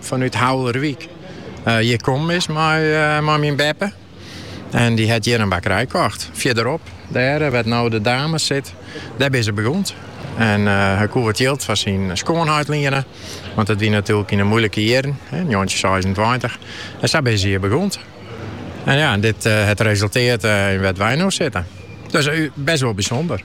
Fanút Houwlerwyk hjir kommen is mei myn beppe. En dy hat hjir in bakkerij kocht. Fierderop, dêr wêr't no de dames sit, dêr binne se begûnd. En hy koe it jild fan syn skoanheit liene, want dat wie natuerlik yn 'e moeilike jierren, njoggentjinhûndertseisentweintich. En sa binne se hjir begûnd. En ja, dit hat resultearre yn wêr't wy no sitte. Dus bêst wol bysûnder.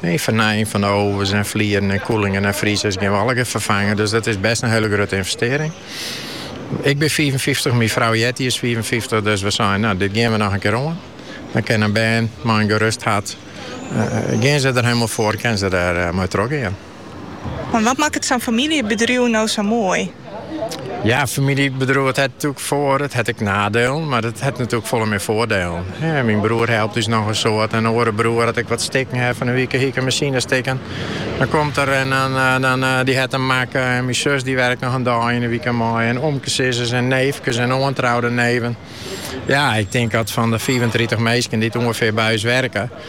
Nee, fernijing fan de ovens en flieren en koeling en friezers gean we allegear ferfange. Dus dat is bêst in hiele grutte ynvestearring. Ik bin 55, myn frou Jetty is 55, dus we seinen, nou, dit gean we noch in kear oan. Dan kin de bern mei in gerust hart, eh, gean se der hielendal foar, kin se der eh, mei trochgean. Wat makket sa'n famyljebedriuw no sa moai? Ja, in famyljebedriuw dat hat natuerlik foar- it hat ek naadelen, mar it hat natuerlik folle mear foardelen. Myn broer helpt ús noch in soad, en in oare broer dat ik wat stikken ha. Fan de wike hie ik in masine stikken. Dan komt er en dan dy hat him makke. En myn sus dy wurket noch in dei yn de wike mei. En omkesizzers, en neefkes en oantroude neven. Ja, ik tink dat fan de fiifentritich minsken dy't ûngefear by ús werke,